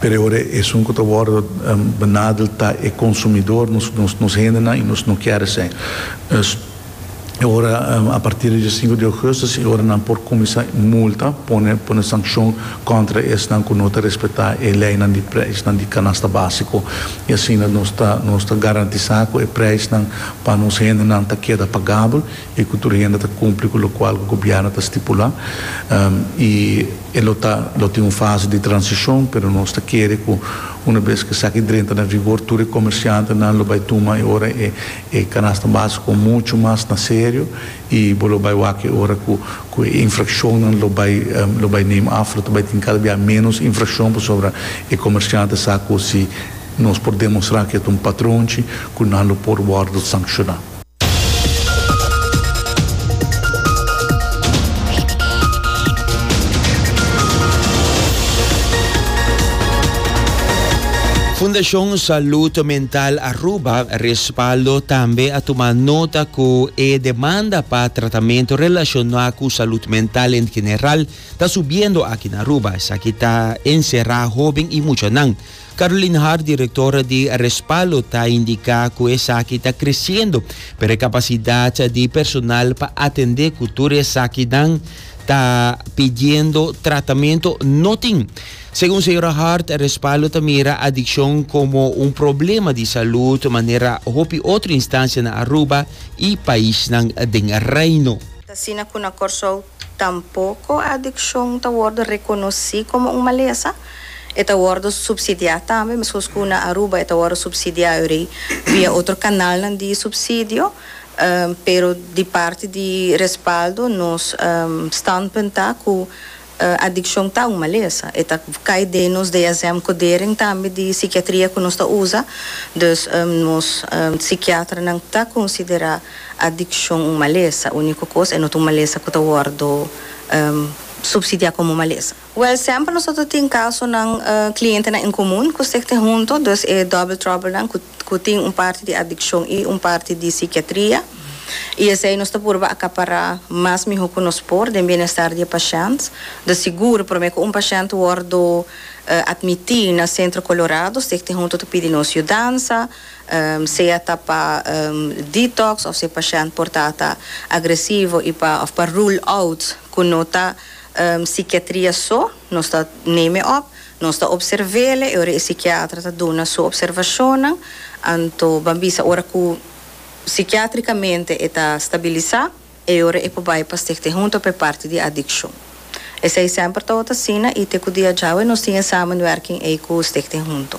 Pero e ora esun cu ta wordo benadel ta e consumidor, nos, nos hendenan y nos no kier esey. Pues, e ora a partir di diasinku di augustus e ora nan por cuminsa multa, pone, pone sancion contra esnan cu no ta respeta e leynan di prijsnan di canasta basico y asina nos ta, nos ta garantisa cu e prijsnan pa nos hendenan ta keda pagabel. E ku tur hende ta kumpli ku lokual ku gobièrnu ta stipulá i e lo ta lo tin un fase di transishon pero nos ta kere ku una bes ku esaki drenta na vigor tur e komersiantenan lo bai tuma e ora e e kanasta básiko muchu mas na serio i bo lo bai wak e ora ku ku e infrakshonnan lo bai lo bai neem af lo ta bai tin kada bia ménos infrakshon pasobra e komersiante sa ku si nos por demostrá ku e ta un patronchi ku nan lo por wòrdu sankshona. Fundashon Salud Mental Aruba respaldo tambe a tuma nota ku e demanda pa tratamentu relashoná ku salud mental en general ta subiendo aki na Aruba. Esaki ta enserá hóben i muchanan. Caroline Hart, directora di Respaldo, ta indica cu esaki ta creciendo, pero e capacidad di personal pa atende cu tur e esakinan ta pidiendo tratamento no tin. Segun señora Hart, Respaldo ta mira adiccion como un problema di salud manera hopi otro instancia na Aruba y paisnan den Reino. Ta asina cu na Corsou tampoco adiccion ta wordo reconoci como un malesa. E ta wordo subsidiá tambe, mescos cu na Aruba e ta wordo subsidiá ori via otro canalnan di subsidio, pero di parti di respaldo nos standpunt ta cu adiccion ta un malesa, e ta cay den nos DSM codering tambe di psiquiatria cu nos ta usa, dus nos psiquiatranan ta considera adiccion un malesa, unico cos e no ta un malesa cu ta wordo subsidiá como malesa. Wèl, semper nosoter tin kasonan, klientenan en komun ku sekte huntu, dus e double troublenan ku ku tin un parti di adikshon i un parti di sikiatria, i esei nos ta purba akapará mas mihó ku nos por den bienestar di e pashènt. Ta sigur, promé ku un pashènt wòrdu atmití na Sentro Kolorado, sekte huntu ta pidi nos yudansa, sea ta pa detox òf si e pashènt por ta ta agresivo i pa òf pa rule out ku no ta Psikiatria so, nos ta neme op, nos ta opservele, e ora e psikiatra ta duna su opservashonnan, anto ban bisa ora ku psikiatrikamente e ta stabilisá, e ora e por bai pa Stichting Hunto pa e parti di adikshon. Esei semper tabata asina i te ku dia djawe nos tin e samenwerking ei ku Stichting Hunto.